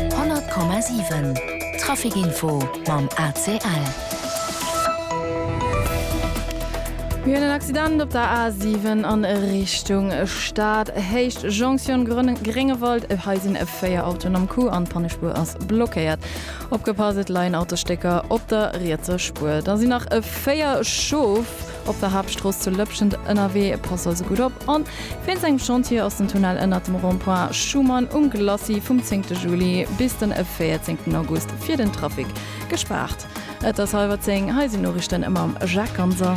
100,7 Trafic Info mam ACL. Mir hunn en Accident op der A7 a Richtung Stad, Héicht Jonction Gréngewald. Hei sinn 4 Autoen am Coup an d'Pannespuer ass blockéiert. Opgepasst, et leien Autostécker op der rietser Spuer. Da sinn nach 4 Schof. Op der Haaptstrooss zu Lëpschent ënnerwee, pass also gutt op. An wéinst engem Chantier ass den Tunnel ënnert dem Rond-point Schuman um Glacis vum zéngte Juli bis den véierzéngten August fir den Trafic gespaart. Et ass hallwer zéng, hei sinn d'Noriichten mam Jacques Ganser.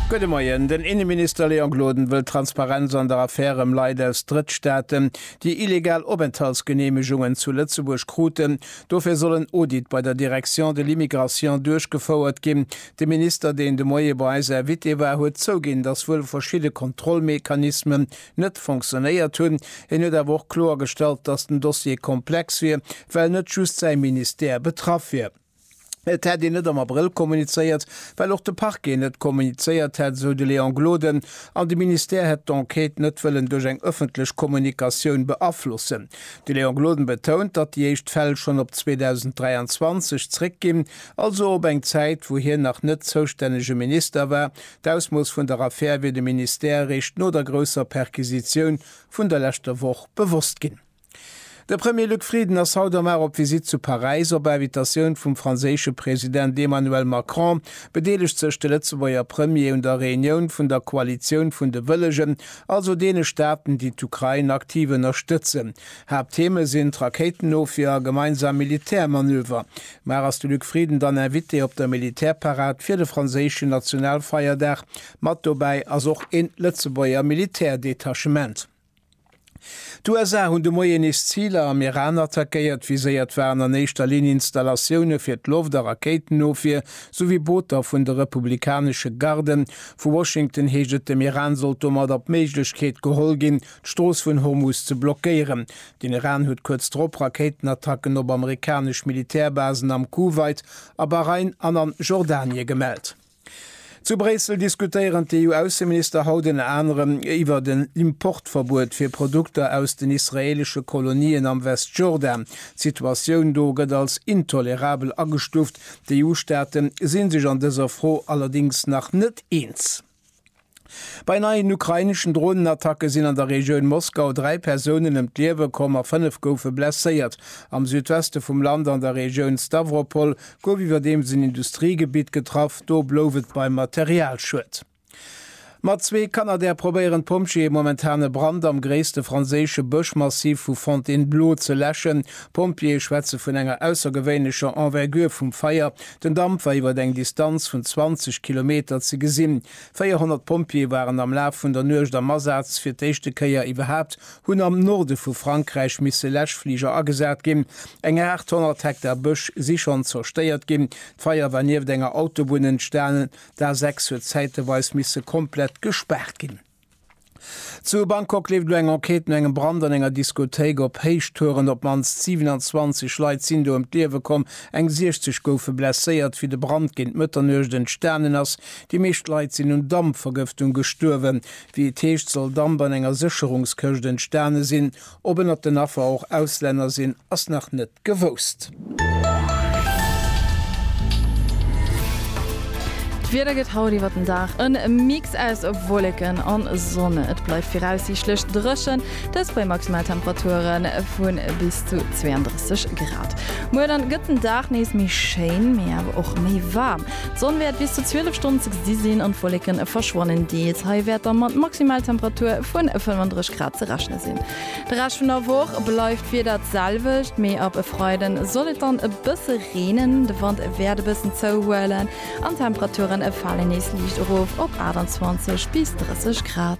Gudde Moien. Den Inneminister Léon Gloden wëll Transparenz an der Affär ëm Leit aus Drëttstaaten, déi illegal Openthaltsgeneemegungen zu Lëtzebuerg kruten. Dofir soll en Audit bei der Direction de l'immigration duerchgefouert ginn. De Minister, deen de Moie bei eis Invité war, huet zouginn, datt wuel verschidde Kontrollmechanismen net fonctionéiert hunn. Hien huet awer och kloergestallt, datt den Dossier komplex wier, well net just säi Ministère betraff wier. Et hätt een net am Abrëll kommunizéiert, well och de Parquet net kommunizéiert hätt, esou de Léon Gloden, an de Ministère hätt d'Enquête net wëllen duerch eng ëffentlech Kommunikatioun beaflossen. De Léon Gloden betount, datt déi éischt Fäll schonn op 2023 zréckginn, also op eng Zäit, wou hien nach net zoustännege Minister war. D'Ausmooss vun der Affär wier dem Ministère eréischt no der grousser Perquisitioun vun der leschter Woch bewosst ginn. De Premier Luc Frieden ass haut am Ar op Visitt zu Paräis. Op Invitatioun vum franséische President Emmanuel Macron bedeelegt sech de Lëtzebuerger Premier un der Reunioun vun der Koalitioun vun de Wëllegen, also deene Staaten, déi d'Ukrain aktiv ënnerstëtzen. Haapttheme sinn d'Rakéitenofwier a gemeinsam Militärmanöver. Mar ass de Luc Frieden dann Invité op der Militärparad fir de franséischen Nationalfeierdag? Mat dobäi ass och een Lëtzebuerger Militärdetachement. D'USA hunn de Moien nees Ziler am Iran attackéiert. Viséiert waren an éischter Linn Installatioune fir d'Loft a Rakéitenofwier, souwéi Booter vun de republikanesche Garden, Vu Washington heescht et, dem Iran sollt domadder d'Méiglechkeet geholl ginn, d'Strooss vun Hormuz ze blockéieren. Den Iran huet kuerz drop Rakéitenattacken op amerikanesch Militärbasen am Kuwait, a Bahrain an a Jordanie gemellt. Zu Bréissel diskutéieren d'EU-Ausseminister haut ënner anerem iwwert en Importverbuet fir Produkter aus den israeelesche Kolonien am Westjordan. D'Situatioun do gëtt als intolerabel agestuuft, D'EU-Staate si sech an dëser Fro allerdéngs nach net eens. Bei neien ukraineschen Dronenattacke sinn an der Regioun Moskau dräi Persounen ëm d'Liewe komm a fënnef goufe blesséiert. Am Südweste vum Land an der Regioun Stawropol gouf iwwerdeems en Industriegebitt getraff, do blouf et beim Materialschued. Mat zwee Kanadair probéieren d'Pompjeeë momentan e Brand am gréisste franséische Bëschmassiv vu Fontainebleau ze läschen. D'Pompjeeë schwätze vun enger aussergewéinlecher Envergure vum Feier. Den Damp war iwwer eng Distanz vun 20 Kilometer ze gesinn. 400 Pompjeeë waren am Laf vun der Nuecht am Asaz. Fir d'éischte Kéier iwwerhaapt hunn am Norde vu Frankräich misse Läschfliger agesat ginn. Eng 800 Hektar Bësch si schonn zerstéiert ginn. D'Feier war nieft enger Autobunn entstanen, D'A6 huet zäiteweis misse komplett gespaart ginn. Zu Bangkok leeft elo eng Enquête no engem Brand an enger Diskothéik op Héichtouren. Op d'mannst 27 Leit sinn do ëm d'Liewe komm, eng 60 goufe blesséiert. Wéi de Brand géint Mëtternuecht entstanen ass, déi meescht Leit sinn un Dampvergëftung gestuerwen. Wéi et heescht, soll Damp an enger Sécherungskëscht entstane sinn. Ob ënnert den Affer och Auslänner sinn, ass nach net gewousst. D'Wieder gëtt haut iwwer den Dag e Mix aus Wolleken a Sonn. Et bleift viraussiichtlech dréchen, dëst bei Maximaltemperature vu bis zu 32 Grad. Muer dann gëtt den Dag nees méi schéin, mee awer och méi waarm. D'Sonn wäert bis zu 12 Stonnen ze gesi sinn an d'Wolleke verschwannen deels. Hei wäert da mat Maximaltemperature vu 35 Grad ze rechne sinn. De Rescht vun der Woch bleift d'Wieder d'selwecht, mee ab e Freide soll et dann e bësse reenen. De Wand wäert e bëssen zouhuelen an d'Temperature fale nees liicht erof op 28 bis 30 Grad.